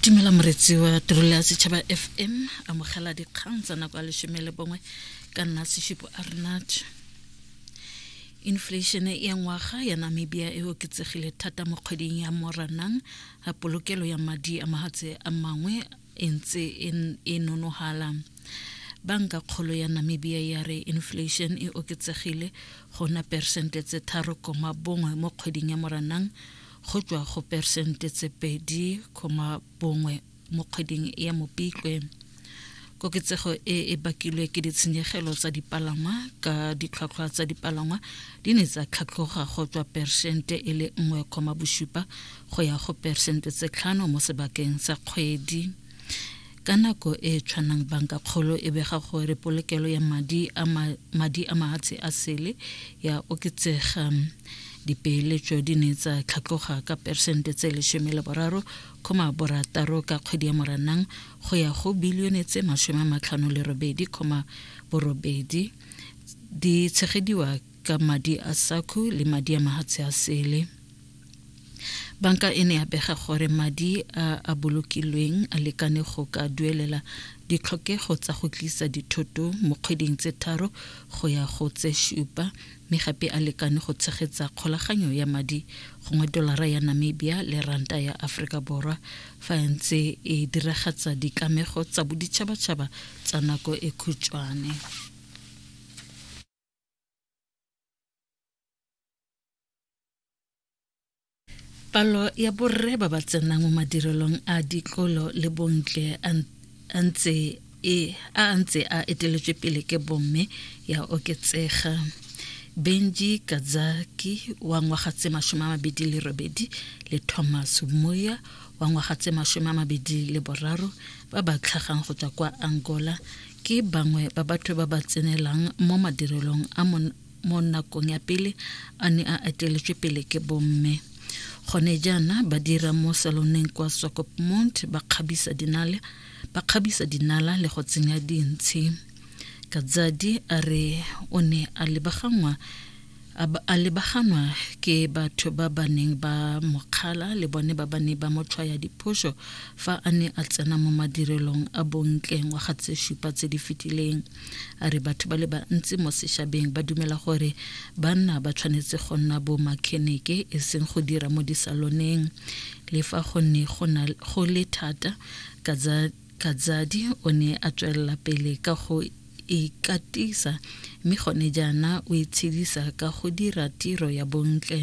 dumela moretsi wa tirelo ya setšhaba fm amogela dikgang tsa nako ya lesome le bongwe ka nna seshupo a renat inflation ya ngwaga ya namibia e oketsegile thata mo kgweding ya moranang polokelo ya madi a mahatshe a mangwe e ntse e, e nonogala banka kgolo ya namibia ya re inflation e oketsegile go na persente tse tharo koma bongwe mo kgweding ya moranang go tswa go persente tse pedi koma bongwe mo kgweding ya mopitlwe koketsego e e bakilwe ke ditshenyegelo tsa dipalangwa ka ditlhwatlhwa tsa dipalangwa di ne tsa tlhatlhoga go tswa persente e le nngwe koma bosupa go ya go peresente tse tlhano mo sebakeng sa kgwedi ka nako e e tshwanang banka kgolo e bega gore polokelo ya madi a madi a mahatshe a sele ya oketsega dipeeletso di ne tsa tlhatloga ka peresente tse lesome le boraro khoma borataro ka kgwedi ya moranang go ya go bilione tse masome a matlhano le robedi khoma borobedi di tshegediwa ka madi a saku le madi a mahatshe a sele banka e ne ya bega gore madi a a bolokilweng a lekane go ka duelela ditlhokego tsa go tlisa dithoto mo kgweding tse tharo go ya go tse šupa mme gape a lekane go tshegetsa kgolaganyo ya madi gongwe dolara ya namibia le ranta ya aforika borwa fa e ntse e diragatsa ditlamego tsa boditšhabatšhaba tsa nako e khutšwane palo ya borre ba ba tsenang mo madirelong a ditlolo le bontle a ntse e a ntse a eteletswe pele ke bomme ya oketsega benji kazaki wa ngwaga tse masome a mabedi le robedi le thomas moya wa ngwaga tse masome a mabedi le boraro ba ba tlhagang go tswa kwa angola ke bangwe ba batho ba ba tsenelang mo madirelong a mo nakong ya pele a ne a eteletswe pele ke bomme gone jaana ba dira mo saloneng kwa sokopmont ba kgabisa dinale ba kgabisa dinala le go tsenya dintshi katsadi a re o ne a lebaganngwa A ba a lebaganwa ke batho ba ba neng ba mo kgala le bone ba ba ne ba mo tshwaya diphoso fa a ne a tsena mo madirelong a bontle ngwaga tse supa tse di fetileng. A re batho ba le bantsi mo seshabeng ba dumela gore banna ba tshwanetse go nna bo makheneke e seng go dira mo disaloneng le fa go ne go le thata ka tsa Kazadi o ne a tswelela pele ka go ikatisa mme gone jaana o itshedisa ka go dira tiro ya bontle.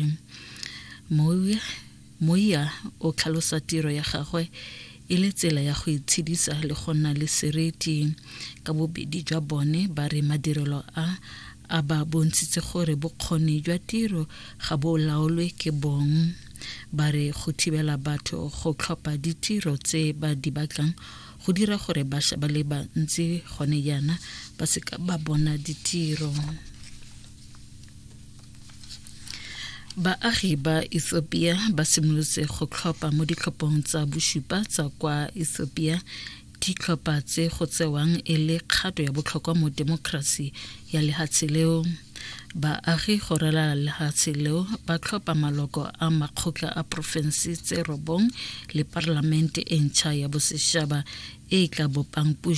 Moya o tlhalosa tiro ya gagwe e le tsela ya go itshedisa le go nna le seriti. Ka bobedi jwa bone ba re madirelo a a ba bontshitse gore bokgoni jwa tiro ga bo laolwe ke bong ba re go thibela batho go tlhopha ditiro tse ba di batlang go dira gore bašwa ba le bantsi gone jaana ba seka ba bona ditiro baagi ba ethiopia ba simolotse go tlhopha mo ditlhophong tsa bosupa tsa kwa ethiopia ditlhopha tse go tsewang e le kgato ya botlhokwa mo temokerasi ya lehatshe leo baagi go ralala lehatshe leo ba tlhopha maloko a makgotla a porofense tse robong le parlamente e ntšha ya bosešaba e tla bopang